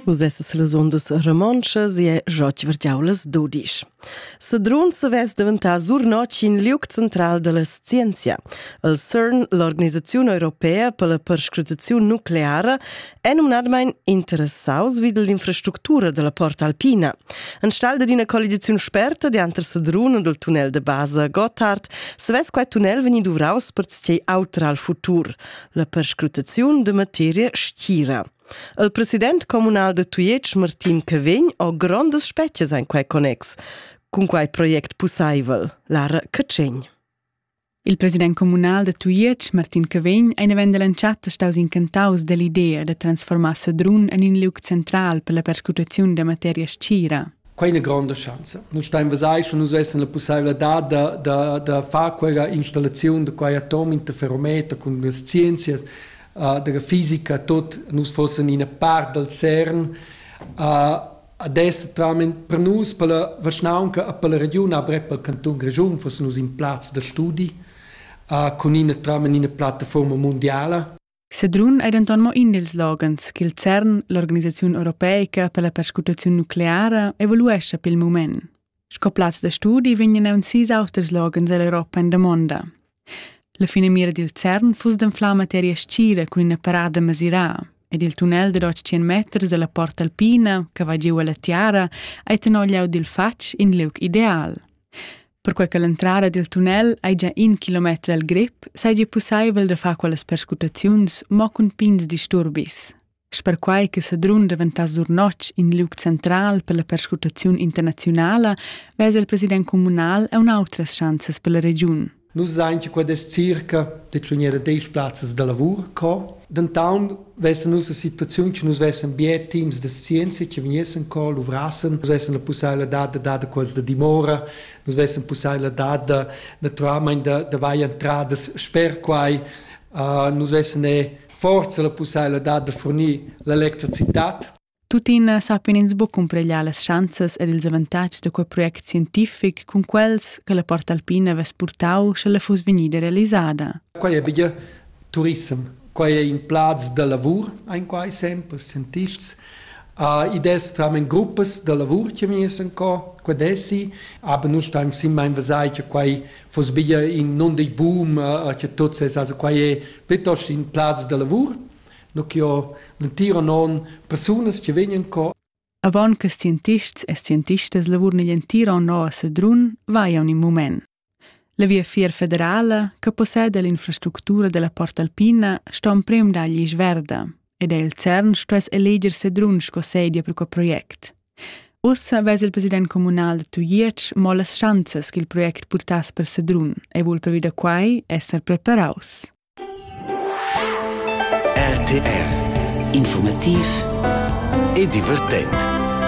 Vus essas las undas romontschas e jot vargiau las dudisch. Sedrun savess daventar Surnotg in liuc central della scienzia. El CERN, l'organisazione europea per la perscrutazione nucleara, è nominadmain interessaus vid l'infrastructura della porta alpina. An stal d'ina collidazione sperta dianter Sedrun e del tunnel de base Gotthard, savess quei tunnel vegnir duvraus per sei autra al futur. la perscrutaziun de materia stgira. Il president comunal de Tujetsch, Martin Cavegn, ho grondas spetgas in quei connex, cun quei project pussaivel, Lara Cacegn. Il president comunal de Tujetsch, Martin Cavegn, ein event dell'entschatta staus incantaus dell'idea de transformar Sedrun en in liug central per la perscrutaziun de materia stgira. Quai è ina gronda schanza. Nus stain vesai sche nus vessen la pussaivladad da, da, da far quella installaziun da quai atom interferometer cun las scienzias uh, della fisica tot nus fossen ina part dal CERN uh, adesso tramit per nus per la Vaschnaunca e per la Region avrei per il Canton Grischun fossen nus in plaz da studi uh, con ina tram in ina plattaforma mondiala Sedrun ei denton mo in dils loghens ch'il CERN, l'organisaziun europeica per la perscrutaziun nucleara, evaluescha pil mument. Sco plaz da studi vegnan aunc sis auters loghens ell'Europa en damonda. La finamira dil CERN fuss d'anflar materia scira cun ina parada masirà ed il tunnel dad 800 meters dalla Porta Alpina, che va giu alla tiara, ei tenor glieud dil fatg in liug ideal. Perquai che l'entrada dil tunnel ei gia in kilometer el grip, seigi pusseivel da far quellas perscrutaziuns mo cun pigns disturbis. Sper quai che Sedrun daventass dur notg in liug central per la perscrutaziun internaziunala, vesa il president communal e un'autras schanzas per la regiun. Nus sain che quest circa de tschunier da deis plazzas da lavur co. Denton vessan nus la situaziun che nus vessen bien teams de scienza che vegnessen co luvrassen, nus vessen la possibilità de dare quels de dimora, nus vessen possibilità de naturalmente de, de vai entradas sper quai, uh, nus vessen forza la possibilità de fornir l'electricitat Tuttina sappian ins buc cumpregliar las schanzas ed ils avantatgs da quei project scientific cun quels che la Port Alpina havess purtau sche la fuss vegnida realisada. Quei è bia turissem. Quei è in plaz da lavur, ein quai sempre scientists. Uh, id es tamen gruppas da lavur che mi essen co, qua desi, aber nu stein sim mein vasai che quai fos bia in non dei boom, uh, che tots es, also quai è piuttosto in plaz da lavur. nu che ho l'entira non persunas che vegnan co Avon che scientists e scientistas lavurn igl entir onn a Sedrun, vai un in mument. La via fier federala, che possede l'infrastructura della Porta Alpina, sto emprem dagli Isverda, ed el CERN stuess eleger Sedrun sco sedia per quel project. Ussa ves il president comunal da Tuiec mo las schanzas che il project purtass per Sedrun e vul previda quai esser preparaus. RTR Informativ e divertent